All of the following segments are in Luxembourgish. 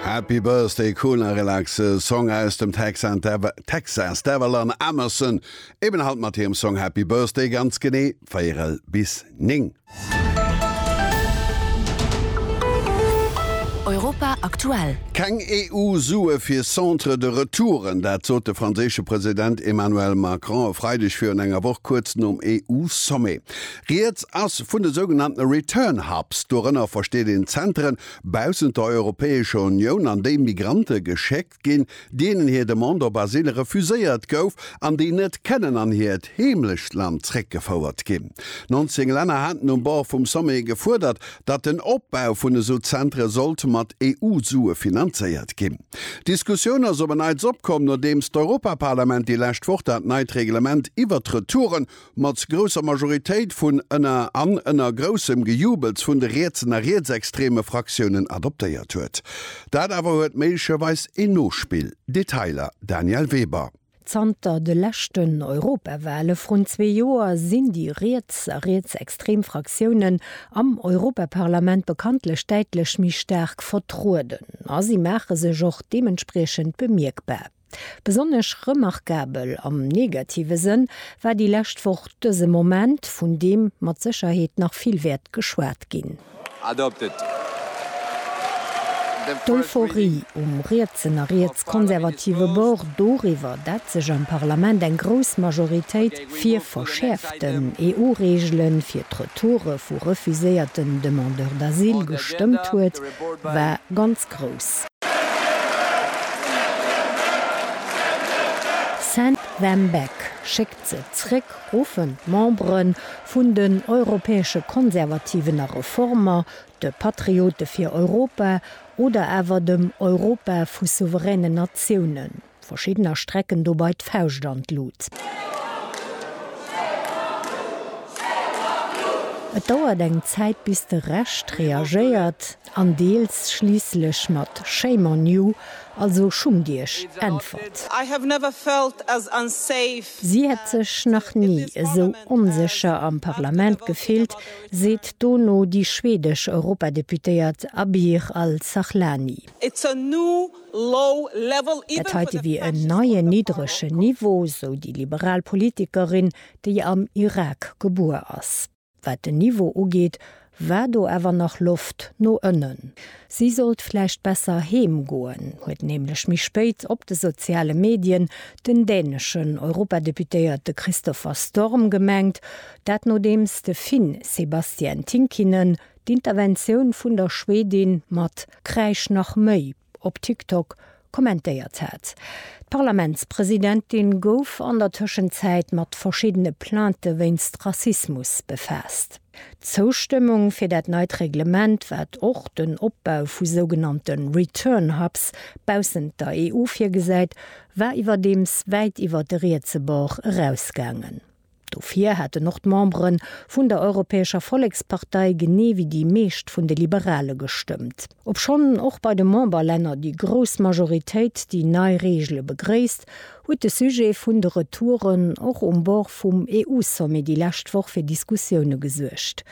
Happy Birthday cool a relaxe Song aus dem Texas Davalan Amerson eben halt mat hirem Song Happy Birthday ganz genee 4 bis 9. Europa aktuell. Keng EU Sue fir Centre de Retouren, dat sot de franséische President Emmanuel Macron e Freideg virun enger Woch kuerz nom EU Sommet. Rieds ass vun de sougenannte Return Hubs. Dorënner versteet een Zenteren baussent der Europäescher Unioun, an déi Migrante geschéckt ginn, deenen hir Demande op Asyl refuséiert gouf an déi net kënnen an hiert Heemlechtland zréckgefouert ginn. 19 Länner haten um Bord vum Sommet gefuerdert, datt den Opbau vun esou Zentere sollt mat EU-Sue finanzéiert ginn. D'Diskussioun ass op en Neits opkomm, nodeems d'Europaparlament déi lescht Woch dat neit Reglement iwwert d'Retouren Mat grousser Majoritéit vun ënner an ënner groussem Gejubels vun de rietsen a rietsextreme Fraktiounen adoptéiert huet. Dat awer huet méiglecherweis een Nospill. Detailer, Danièle Weber. Zanter de leschten Europawale vrun zwee Joer sinn déi riets a rietsextrem Fraktiounen am Europaparlament bekanntlech däitlech méi staark vertrueden a si maache sech och deementspriechend bemierkbar. Besonnesch remarkabel, am negative Sënn, war déi lescht Woch dëse Moment, vun deem mat Sécherheet nach vill wäert geschwat ginn. D'Euphorie um rietsen a rietskonservative Bord doriwwer, dat sech am Parlament eng grouss Majoritéit fir verschäerften EU-Reegele fir d'Retoure vu refuséierten Demandeurs d'asile gestëmmt huet, war ganz. Musek grouss. Send them back, Schéckt se zréck, ruffen d'Membere vun den Europäesche Konservativen a Reformer, de Patriote fir Europa oder awer dem Europa vu souveränen Natiounen. Verschiddener strecken dobei d'Fauscht an d'Lut. Et dauert eng Zäit bis de Rescht reagéiert an deels schliisslech mat Shame on you, also schummt iech, äntwert. Si hätt sech nach ni esou onsécher am Parlament gefillt, seet dono déi schwedesch Europadeputéiert Abir Al-Sahlani. Dat heite wier en neien niddregen Niveau, sou déi liberal Politikerin, déi am Irak gebuer ass. Wat den Niveau ugeet, war do awer nach Loft no ënnen. Si sollt vläicht besser heem goen, huet nämlech méi spéit op de soziale Medien den däneschen Europadeputéierte Christopher Storm gemengt. Dat nodeems de Finn Sebastian Tynkkynen d'Interventioun vun der Schwedin mat Kräisch nach méi op TikTok kommentéiert hat. D'Parlamentspresidentin gouf an der Tëschenzäit mat verschiddene Plainte wéinst Rassismus befaasst. D'Zoustëmmung fir dat neit Reglement, wat och den Opbau vu sougenannte Return Hubs baussent der EU virgesäit, war iwwerdeems wäit iwwer de rietse Bord erausgaangen. Dofir hätten och d'Membere vun der Europäescher Vollekspartei genee wéi déi meescht vun de Liberale gestëmmt. Obschonn och bei de Memberlänner déi grouss Majoritéit déi nei Reegele begréisst, huet de Sujet vun de Retouren och um Bord vum EU-Sommet déi lescht Woch fir Diskussioune gesuergt.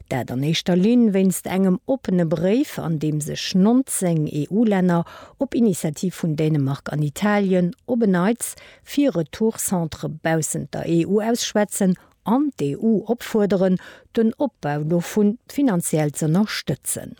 Dat an éischter Linn wéinst engem oppene Bréif, an deem sech 19 EU-Länner op Initiativ vun Dänemark an Italien op en Neits fir Retourcentre baussent der EU ausschwätzen an d'EU opfuerderen, den Opbau dovu finanziell z'ënnerstëtzen.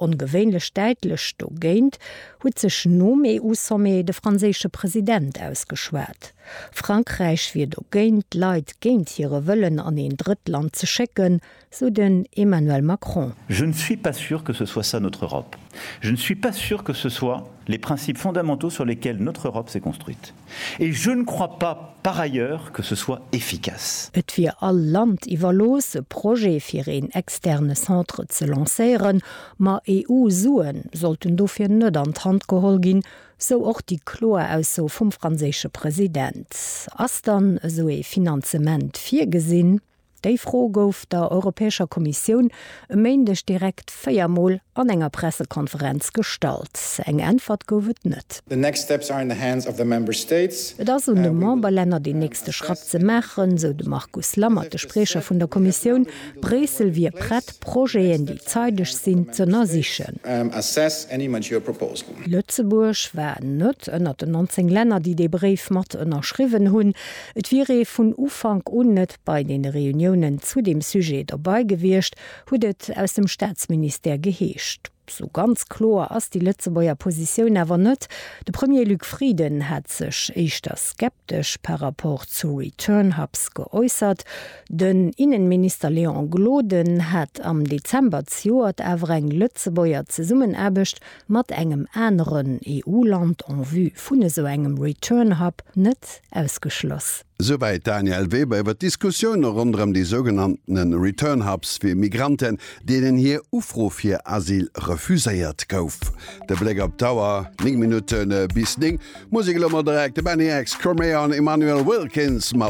Ongewéinlech däitlech dogéint huet sech nom EU-Sommet de franséische President ausgeschwat. Frankräich wier dogéint, d'Leit géint hire Wëllen an een Drëttland ze schécken, sou den Emmanuel Macron. Je ne suis pas sûr que ce soit ça notre Europe. Je ne suis pas sûr que ce soit les principes fondamentaux sur lesquels notre Europe s'est construite. Et je ne crois pas, par ailleurs, que ce soit efficace. Et wier all Land iwwerlooss, e Projet fir een externe Centre ze lancéieren, ma EU-Sue sollten dofir net an d'Hand geholl ginn, sou och déi kloer Ausso vum franséische President. Ass dann esou ee Finanzement virgesinn? Déi Fro gouf der Europäescher Kommissioun e Méindeg direkt véier Mol an enger Pressekonferenz gestallt. Eng Äntwert gouf et net. Et ass un de Memberlänner deen nächste Schratt ze maachen, esou de Markus Lammert, de Spriecher vun der Kommissioun. Bréissel wier prett, Projeten, déi zeideg sinn, z'ënnersichen. Lëtzebuerg war net ënnert den 19 Länner, déi dee Bréif mat ënnerschriwwen hunn. Et wier ee vun Ufank un net bei deene Reuniounen zu deem Sujet dobei gewiescht, huet et aus dem Staatsministère geheescht. Sou ganz kloer ass déi Lëtzebuerger Positioun awer net. De Premier Luc Frieden hat sech éischter skeptesch par rapport zu Return Hubs geäussert. Den Innenminister Léon Gloden hat am Dezember zejoert awer eng Lëtzebuerger Zesummenaarbecht mat engem aneren EU-Land en vue vun esou engem Return Hub net ausgeschloss. Souwäit d'Danièle Weber iwwer d'Diskussioune ronderëm déi sougenanntene Return Hubs fir Migranten, deenen hir Ufro fir Asyl refuséiert gouf. De Bléck op d'Auer, 9 Minutte bis 9, Musek elo mol direkt, de Benny X, Chromeon, Immanuel Wilkins mat.